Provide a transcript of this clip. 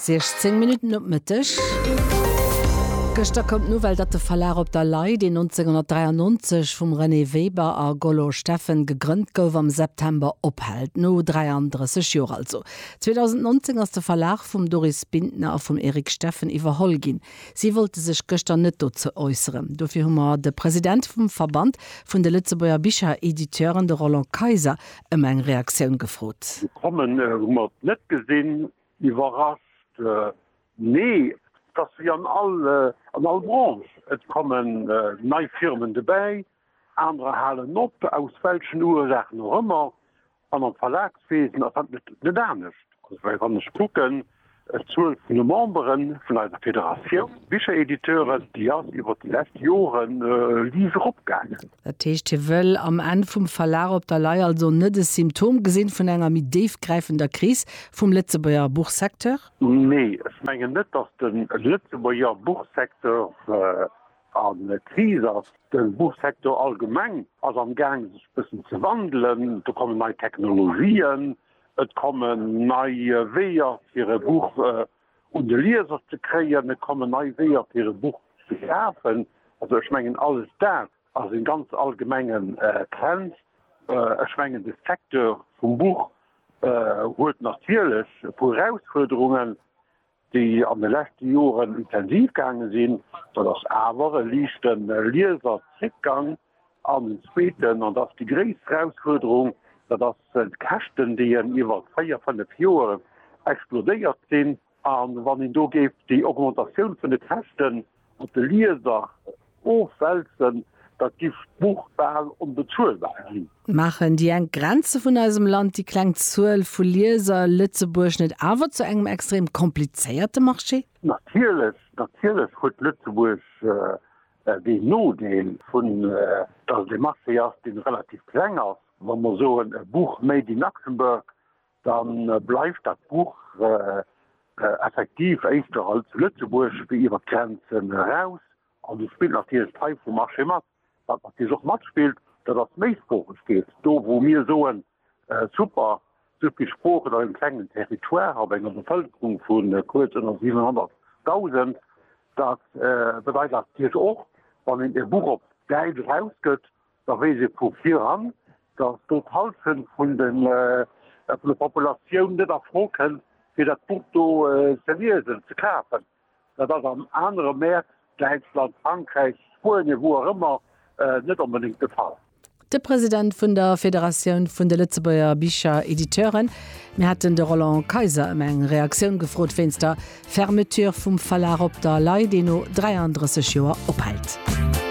16 Minutten op Mëtteg. Gëschter koum d'Nouvelle, datt de Verlag Op der Lay, deen 1993 vum Renée Weber a Gollo Steffen gegrënnt gouf, am September ophält. No 33 Joer also. 2019 ass de Verlag vum Doris Bintner a vum Eric Steffen iwwerholl ginn. Si wollte sech gëschter net dozou äusseren. Dofir hu mer de President vum Verband vun de Lëtzebuerger Bicherediteuren, de Roland Kayser, ëm eng Reaktioun gefrot. Kommen hu mer et net gesinn. Iwwerrascht? Nee, et ass wéi an all Branche, et kommen nei Firmen dobäi, anerer halen op, aus welchen Ursachen och ëmmer. An am Verlagswesen ass dat net anescht. Well wann ech kucken, d'Zuel vun de Membere vun eiser Federatioun Bicherediteuren, déi ass iwwert déi lescht Jore liis eropgaangen. Dat heescht, hie wëll am Enn vum Verlag op der Lay also net e Symptom gesinn vun enger méi déifgräifender Kris vum Lëtzebuerger Buchsecteur? Nee, ech mengen net, datt de Lëtzebuerger Buchsecteur a Kris ass. De Buchsecteur allgemeng ass am Gaang sech e bëssen ze wandelen. Do kommen nei Technologien, Et kommen nei Weeër fir e Buch un de Lieser ze kréien, et kommen nei Weeër fir e Buch ze kafen. Also ech mengen alles dat ass e ganz allgemenge Trend. Ech mengen de Secteur vum Buch huet natierlech e puer Erausfuerderungen, déi an de leschte Joren intensiv gaange sinn, dat ass awer e liichte Lieserzréckgang, an den zweeten, an dat ass déi gréisst Erausfuerderung, dat ass d'Käschten, déi en iwwer véier, fënnef Joer explodéiert sinn. A wann een do géif déi Augmentatioun vun de Käschten Op de Lieser ofwälzen, da giff d'Buch bal onbezuelbar ginn. Maachen déi enk Grenze vun eisem Land, déi kleng Zuel vu Lieser, Lëtzebuerg net awer zu engem extrem komplizéierte Marché? Natierlech, natierlech huet Lëtzebuerg deen Nodeel vun, dass et ee Marché ass, dee relativ kleng ass. Wa mer soen, e Buch made in Luxembourg, Da bleift dat Buch effektiv éischter hei zu Lëtzebuerg wéi iwwer d'Grenzen eraus. An do spillt natierlech d'Taille vum Marché mat. Wat natierlech och matspillt, dat ass d'Méisproochegkeet. Do wou mir soen, super, esou vill Sproochen op engem klengen Territoire, op enger Bevëlkerung vu kuerz ënner 700.000, dat bedeit natierlech och, wann een e Buch op Däitsch erausgëtt, da weess ee vu viran, datt do d'Hallschent vun der Populatioun net a Fro kënnt, fir dat Buch do ze liesen, ze kafen. Dat ass an anere Mäert, Däitschland, Frankräich, Spuenien, wou och ëmmer, net onbedéngt de Fall. De President vun der Federatioun vun de Lëtzebuerger Bicherediteuren, Mir hätten de Roland Kayser ëm eng Reaktioun gefrot wéinst der Fermeture vum Verlag op der Lay, deen no 33 Joer ophält.